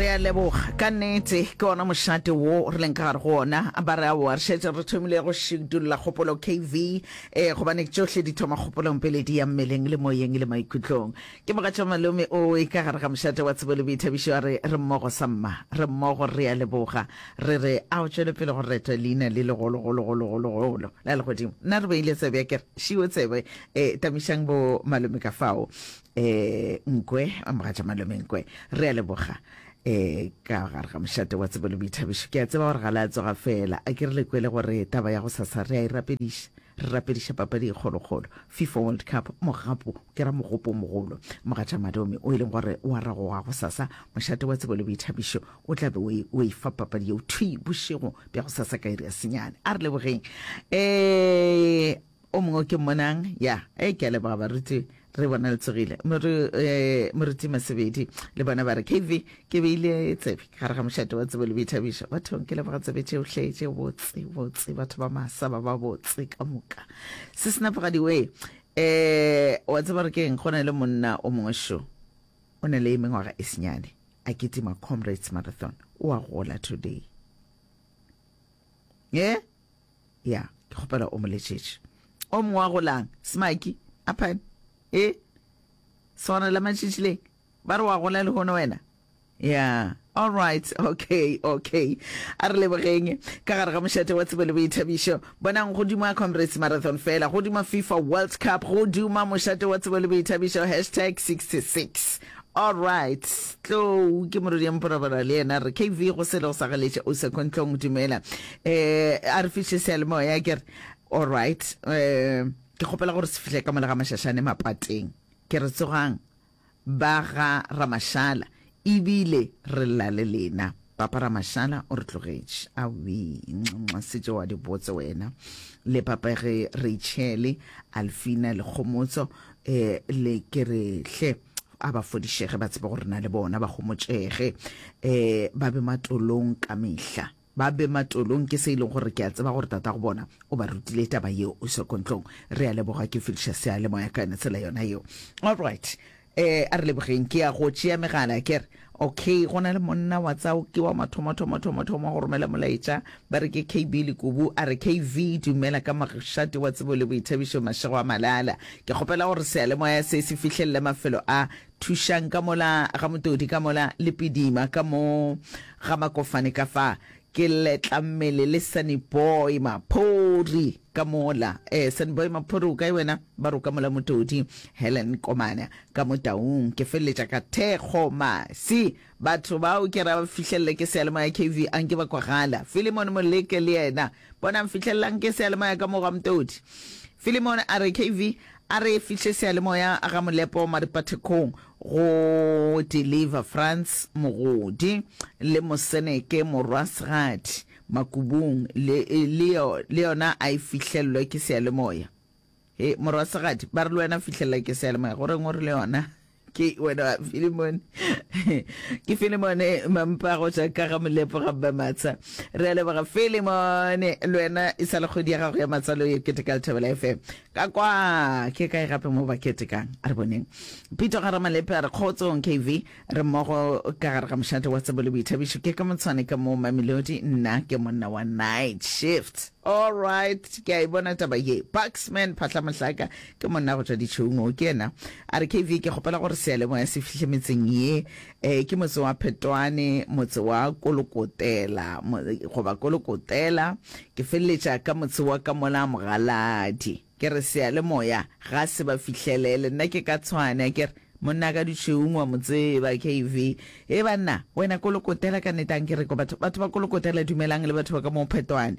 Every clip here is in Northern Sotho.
re a leboga ka nnete ke ona mošate wo re leng ka gare go ona ba re aowa re šetse re thomile go šidulla kgopolo kv um gobane tšohle di thoma kgopolong pele di ya mmeleng le moyeng le maikutlong ke mogatša malome o e ka gare ga mošate wa tsebo le boithabišo a re re mmogo sa mma re mmogo re a leboga re re a o tšwele pele go retwa leina le legologologologologolo la legodimo nna re beile tsebe ya kere šiwe tsebe um tamišang bo malome ka fao eh nkwe a mogatša malome nkwe re a leboga eh ka gare ga mošate wa tsebo le boithabišo ke a tseba gore ga le a tsoga fela a ke re le kwele gore taba ya go sasa re a e rapediša re rapediša papadi e kgolokgolo fifa world cup mogapo ke ra mogopo mogolo mogatša malome o e leng gore wa ragoga go sasa mošate wa tsebo le boithabišo o tla be o e fa papadi yeo thwi bošego bja go sasa ka iri ya senyane a re lebogeng um O mongwe o ke mmonang, ya, ee, ke a leboga, baruti, re bona le tsogile. Moru, eh, Moruti Masebedi le bona ba re, KV, ke beile tsebe ka gare ga mošate wa tsebo le boithabišo. Bathong, ke leboga tsebe tšeohle tše botse, botse, batho ba masa ba ba botse ka moka. Se senapogadi wee, eh, wa tseba gore ke eng, go na le monna o mongwe šo, o na le mengwaga e senyane, a kitima Comrades Marathon, o a gola today. Eh? Ya, ke kgopela o mo letšetše. O mongwe wa golang, Smaki, Apan? E? Swanela matšitšileng? Ba re wa gola lehono wena? Ya, all right, okay, okay. A re lebogeng. Ka gare ga mošate wa tsebo le boithabišo. Bonang, go duma Comrades Marathon fela, go duma FIFA World Cup, go duma mošate wa tsebo le boithabišo, hashtag 66. All right, tlou ke morodi ya mporabora le yena re KV go sele go sa galetša o second tlong dumela eh a re fihle sealemoya ke re all right eh ke kgopela gore se fihle ka mola ga mašašane mapateng ke re tsogang ba ga ramashala ebile re lla le lena Papa Ramashala o re tlogetše. Awii, nxa se tšeo a di botse wena. Le papa ge Reitšhele, Alfina le Kgomotso eh, le ke re hle a ba fodišege ba tsebe gore na le bona ba gomotšege. Eh, ba be matolong ka mehla. Ba be matolong ke se e leng gore ke a tseba gore tata go bona o ba rutile taba yeo o sekontlong. Re a leboga ke fediša seyalemoya ka yone tsela yona yeo. All right. Ee, a re lebogeng. Ke ya go tšea megala. Ke re, Okay, go na le monna wa tsa, ke wa mathomathomothomathomo go romela molaetša, ba re ke KB Lekubu. A re, KV, dumela ka mošate wa tsebo le boithabišo mašego a malala. Ke kgopela gore seyalemoya se se fihlelle mafelo a, thušang ka mola, ga Motodi ka mola, le Pidima ka mo, ga Makofane ka fa. Ke letla mmele le Sunny Boy Maphori ka mola. Eh, Sunny Boy Maphori o kae wena? Ba roka mola Motodi, Helen Komana ka Motaung. Ke feleletša ka thekgo masi. Batho bao ke ra ba fihlelele ke seyalemoya KV a nke ba kwagala. Filimon Moleke le yena bonang fihlelelang ke seyalemoya ka mo ga Motodi. Filimon a re KV a re fihle seyalemoya ga Molepo Maripathekong. Go deliver Frans Mogodi le Moseneke Morwasgadi Makubung le, le, yo, le yona a e fihlellwe ke seyalemoya. He, Morwasgadi, ba re le wena fihlelela ke seyalemoya. Go reng o re le yona? Ke wena Filemone. Ke Filemone Mampago ja ka ga Molepo ga Mma Matsha. Re a leboga Filemone, le wena e sa le kgwedi ya gago ya matsalo ye kete ka Lethabela FM. Ka kwa, ke kae gape mo ba ketekang? A re boneng. Pito ga Ramalepe a re kgotsong KV, re mmogo ka gare ga mošate wa tsebo le boithabišo. Ke ka motshwane ka moo Mamelodi, nna ke monna wa night shift. All right, ke a e bona taba ye. Bucksman Phahla Mohlaka ke monna go tšwa ditšhoung o, ke yena. A re KV, ke kgopela gore seyalemoya se fihle metseng ye Ee, ke motse wa Phetwane, motse wa Kolokotela, goba Kolokotela. Ke feleletša ka motse wa ka mola, Mogaladi. Ke re, Seyalemoya ga se ba fihlele. Le nna ke ka tshwane, a ke re, Monna ka Dutšheung wa mo tseba, KV. Hee banna, wena Kolokotela ka nnete, a nke re ko batho, batho ba Kolokotela dumelang le batho ba ka moo Phetwane.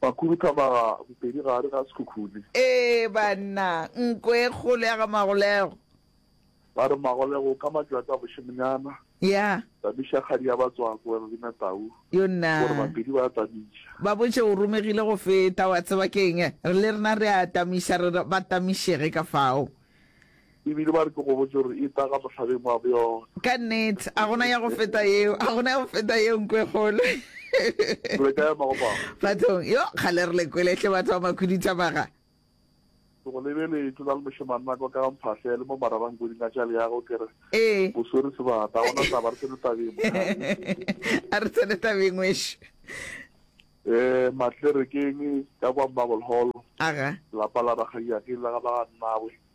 Ba khuduthamaga bopedi gare ga sekhukhune. Ee, banna, nko e kgolo ya ga Magolego. Ba re, Magolego, ka matšatsi a bošemonyana, Ya. tamiša kgadi ya batswako, wena le Natau, Yo nna. gore bapedi ba tamiša. Ba botše, O romegile go feta, wa tseba ke'ng? Re le rena re a tamiša, re re ba tamišege ka fao. E bile ba re, Ke go botše gore eta ka mohlabeng wa bjona. Ka nnete, a gona ya go feta yeo, a gona ya go feta yeo, nko e kgolo. Re ka ema go bao. Bathong, yo, kgale re le kwele, hle batho ba makhuduthamaga. Ke go lebeletše, o na le mošemannaka o ka ga mphahle, le mo mararangkuding a tša leago, ke re, Ee. O swere sebata, ga gona taba, re tsene tabeng, mokgalabje. A re tsene tabeng, wešu. Ee, Matlerekeng, ka kwa Marble Hall, Aga. lapa la rakgadiake le la ga ba ga nnawe,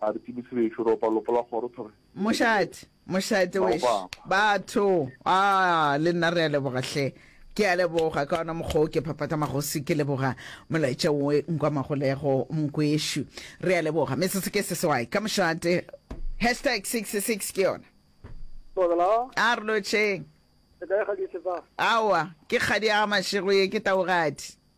A re tsebise bešo, re opa lopo la kgoro thore. Mošate, mošate wešo, batho, a le nna re a leboga hle. Ke a leboga ka ona mokgwa o ke phaphatha magosi ke leboga molaetša wo nkwa magolego mkwešo. Re a leboga metse se ke se sewai ka mošate hashtag 66 ke yona. A re lotšheng. Aowa ke kgadi ya ga Mašego ye ke Taogadi.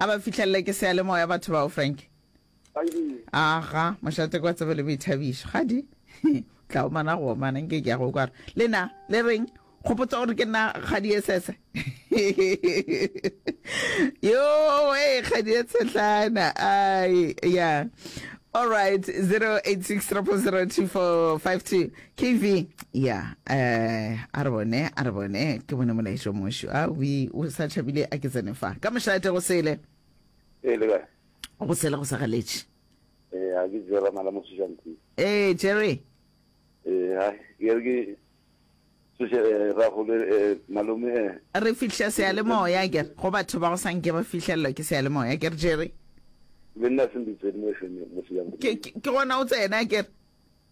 a ba fihlelele ke seyalemoya batho bao frank aga mošate kwa tsebe le boithabišo ga di tla omana go omana nke ke ya go kwara le na le reng kgopotsa gore ke nna kgadi e sese yo e kgadi e tshetlana ai ya all right 086 0002452 KV, ya, eh, a re bone, a re bone, ke bone molaetšo mošo. A, wi, o sa tšhabile, a ke tsene fa. Ka mošate go sele. E, le kae? Go sele go sa galetše. E, a ke jera mala mo sešantsi. E, Jerry. E, ha, ke re ke, seshe, e, eh, ra gole, e, eh, malome, e. Eh. Re fihla seale moya, ke re, go batho ba go sanke ba fihlelelwa ke seale moya, ke re, Jerry. Le nna se mbitsedi mo FM, mo sešantsi. Ke, ke, ke gona o tsena, ke re.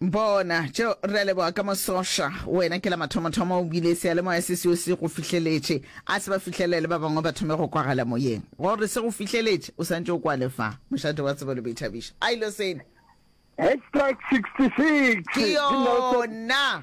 Bona, tšeo, re a leboga ka mosoša, wena ke la mathomothomo o bile, Seyalemoya se seo se go fihleletše. A se ba fihlelele le ba bangwe ba thome go kwagala moyeng, gore se go fihleletše, o santše o kwa le fa, Mošate wa Tsebo le Boithabišo. A ilo sena. Extract 66, Ke yona.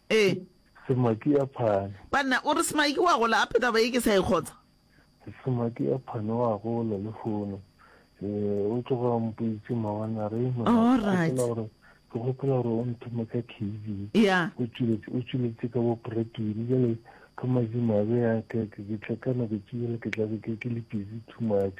Ee. Semaki ya phane. Banna, o re Semaki wa gola gape taba ye ke sa e kgotsa. Semaki ya phane wa gola lehono. Ee, o tloga o mpoitše mawana re e nwa. All right. Ke gopola gore o nthome ka KV. Ya. O tšweletše, o tšweletše ka bo Bradwilly. Jale ka mazimabe ya ke, ke, ke tla ka nako tše jale ke tla be ke, ke le busy too much.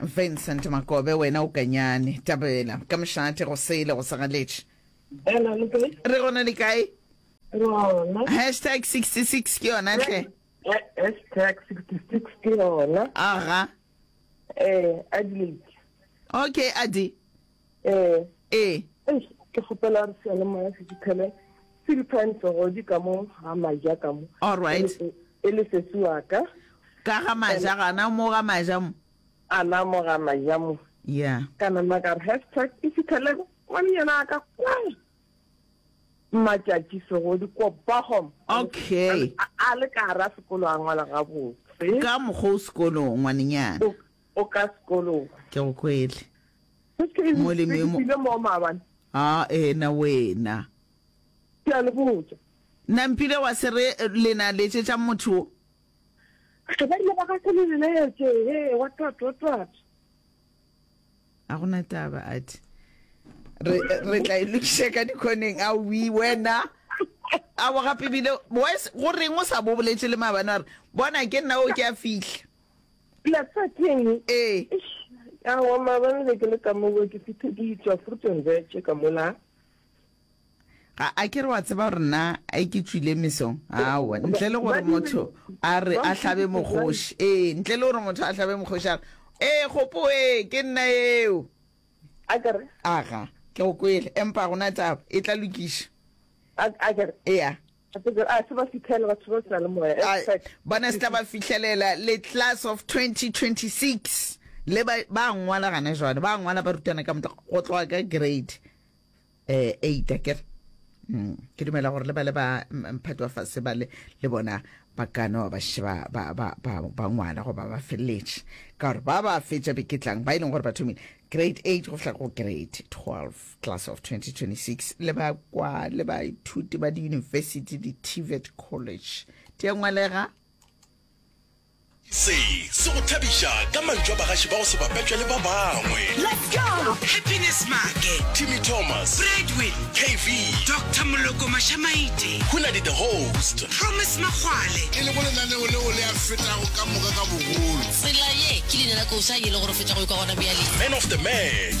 Vincent Makobe, Wena o kanyane. Tabela, ka mošate, go sele, go segaletše. Bela, le kae? Re gona le kae? Rona. Hashtag 66 ke yona hle. Hashtag 66 ke yona. Aga. Eh, Adelaide. Okay, Adi. Ee. Ee. Eish, ke kgopela gore seyalemoya se fitlhele Silphine Segodi ka mo ga Maja ka mo. All right. E, e le sesi wa ka. Ka ga Maja gana mo ga Maja mo. Ana mo ga Maja mo. Yeah. Ka nama ka re hashtag e fitlhele ngwanyana wa ka kwa Matšatši Segodi ko Bochum. Okay. A, a le ka ra sekolo a ngwala gabotse. Ka mokgwa o sekolong ngwanenyana. O, o ka sekolong. Ke go kwele. Se ke eng? Molemi yo mo- Ke mo maabane. A ena wena. Ke a le botša. Nampile wa se re le na letšetšang motho wo? Ge ba rile ba ka se le leletše, he, wa twat, wa twat. A go na taba, a thi. Re, re tla e lokiša ka dikhoneng. A wi, wena. A wa gape bile, wa se, go reng o sa bo boletše le maabane wa re, Bona, ke nna o, ke a fihla. Pila tsa teng. Ee. A wa mabane le ke le ka mo ke fithe ke itswa fruit and veg ka mola. Ga a ke re wa tseba gore nna a ke tswile mesong. Awa, ntle le gore motho a re a hlabe mogoshi. Ee, ntle le gore motho a hlabe mogoshi a re, "Ee, gopo ee, ke nna eo." A ke re. Aga, ke go kwele, empa gona taba e tla lokiša. A ke re. Ea. Bona se tla ba fihlelela le class of 2026 le ba ba ngwala gana jwale ba ngwala ba rutana ka motla go tloga ka grade eh 8 ke mm, ke dumela gore le ba le ba mphatwa fa se ba le le bona ba kana ba sheba ba ba ba ba ngwala go ba ba felletse ka gore ba ba fetša beketlang ba ileng e gore ba thomile grade 8 go fihla go grade 12 Class of 2026 le ba kwa le baithuti ba diyunibesithi di-tvet college di a ngwalega se se go thabiša ka mantšu a bagaši ba go se bapetšwe le ba bangwe Let's go! Happiness Make, timmy thomas Bradwin, kv Doctor Moloko Mashamaite, hunadi the host Promise Makgwale, e lego lenaneo leo le a fetago ka moka ka bogolo Tsela ye ke leina la kousa ye le gore feta go ikwa gona bjale. man of the match